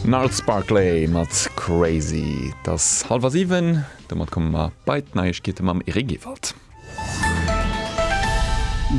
Gnarls Barkley mat Crazy. Et ass hallwer siwen, domat komme mer bei d'Neiegkeete mam Eric Ewald.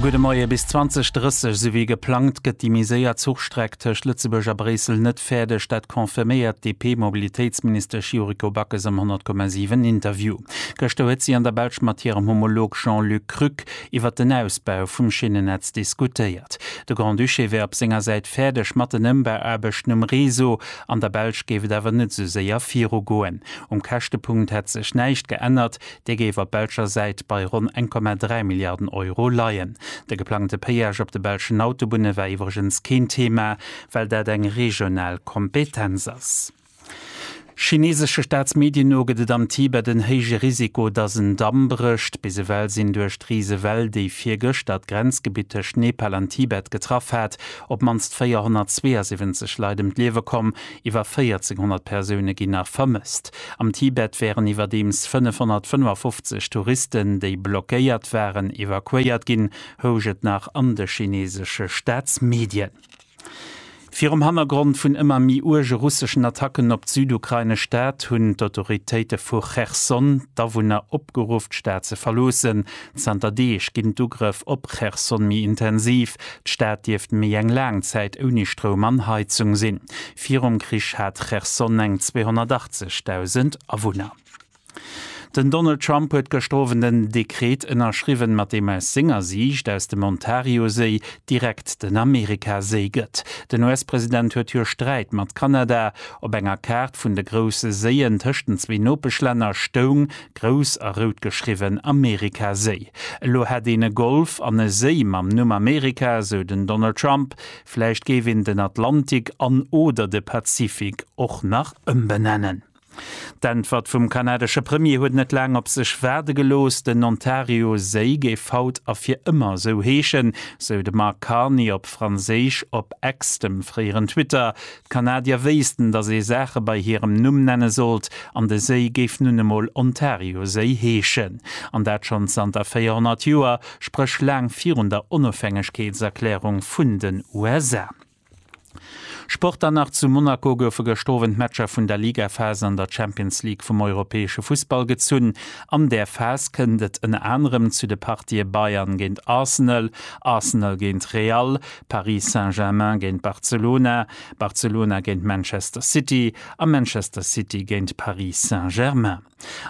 Gudde Moie. Bis 2030, sou wéi geplangt, gëtt déi méi séier Zuchstreck tëscht Lëtzebuerg a Bréissel net fäerdeg. Dat confirméiert d'DP-Mobilitéitsministesch Yuriko Backes am 100,7 Interview. Gëschter huet si an der Belsch mat hirem Homolog Jean-Luc Krück iwwert den Ausbau vum Schinnennetz diskutéiert. De Grand-Duché wär op senger Säit fäerdeg mat den Ëmbauaarbechten um Réseau. An der Belsch géif et awer net esou séier virugoen. Um Käschtepunkt hätt sech näischt geännert, dee géif op belscher Säit bei ronn 1,3 Milliarden Euro leien. De geplangte Péage op de belschen Autobunne war iwwregens keen Thema, well dat eng regional Kompetenz ass. Chineesesche Staatsmedien no gëtt et am Tibet en héije Risiko, datt en Damm brécht. Bis ewell sinn duerch d'Risewell, déi virgëschter d'Grenzgebitt tëscht Nepal an Tibet getraff hat, op d'mannst 472 Leit ëm d'Liewe komm. Iwwer 1400 Persoune ginn nach vermësst. Am Tibet wären iwwerdeems 555 Touristen, déi blockéiert waren, evakuéiert ginn, housch et nach an de chineesesche Staatsmedien. Virum Hannergrond vun ëmmer méi uerge russeschen Attacken op d'südukrainesch Stad hunn d'Autoritéite vu Cherson d'Awunner opgeruff, d'Stad ze verloossen. Zanter Deeg ginn d'Ugrëff op Cherson méi intensiv. D'Stad dierft méi eng laang Zäit ouni Stroum an Heizung sinn. Virum Krich hat Cherson eng 280.000 Awunner. Den Donald Trump huet gëschter Owend en Dekret ënnerschriwwen, mat deem aus senger Siicht aus dem Ontarioséi direkt den Amerikaséi gëtt. Den US-President huet jo Sträit mat Kanada. Op enger Kaart vun de grousse Séien tëscht den zwee Nopeschlänner stoung, grouss a rout geschriwwen, Amerikaséi. Elo hätt een e Golf an e Séi mam Numm Amerika, sou den Donald Trump. Vläicht géif een den Atlantik an oder de Pazifik och nach ëmbenennen. D'Äntwert vum kanadesche Premier huet net laang op sech waarde gelooss. Den Ontario-Séi géif haut a fir ëmmer esou heeschen, sou de Mark Carney op Franséisch op X, dem fréieren Twitter. D'Kanadier wéissten, datt ee Saache bei hirem Numm nenne sollt, an de Séi géif nun emol Ontario-Séi heeschen. An dat schonn zanter 400 Joer, spréch laang virun der Onofhängegkeetserklärung vun den USA. Sport Dann nach zu Monaco goufe gëscht Owend d'Matcher vun der Ligaphas an der Champions League vum europäesche Fussball gezunn. An där Phas kënnt et ënner anerem zu de Partië Bayern géint Arsenal, Arsenal géint Real, Paris Saint-Germain géint Barcelona, Barcelona géint Manchester City a Manchester City géint Paris Saint-Germain.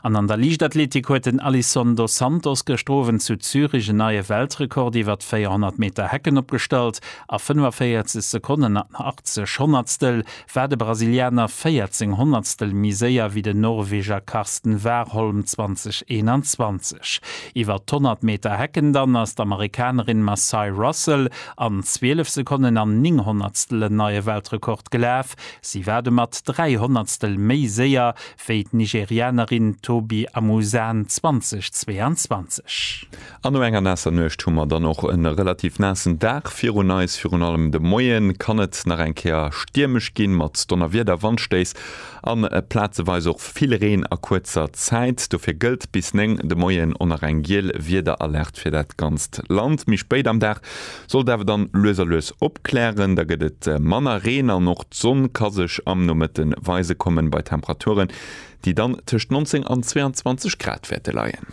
An an der Liichtathletik huet den Alisson dos Santos gëschter Owend zu Zürich en neie Weltrekord iwwert d'Véierhonnert Meter Hecken opgestallt. A 45 Sekonnen an 80 Honnertstel war de Brasilianer 14 Honnertstel méi séier wéi den Norweger Karsten Warholm, 2021. Iwwert d'Honnert Meter Hecken dann ass d'Amerikanerin Macye Russell an 12 Sekonnen an 9 Honnertstel en neie Weltrekord gelaf. Si war domat 3 Honnertstel méi séier wéi d'Nigerianerin Tobi Amusan 2022. An no enger naasser Nuecht hu mer dann och e relativ naassen Dag virun eis. Virun allem de Moie kann et nach eng Kéier stiermesch ginn, mat Donnerwieder, Wandstéiss a plazeweis och vill Reen a kuerzer Zäit. Dofir gëllt bis 9 de Moien o nach eng giel Wiederalert fir dat ganzt Land. Méi spéit am Dag Sollt awer dann lues a lues opklären, da gëtt et manner Reen an och d'Sonn ka sech am Nomëtte weise kommen, bei Temperaturen, déi dann tëscht 19 an 22 Grad wäerte leien.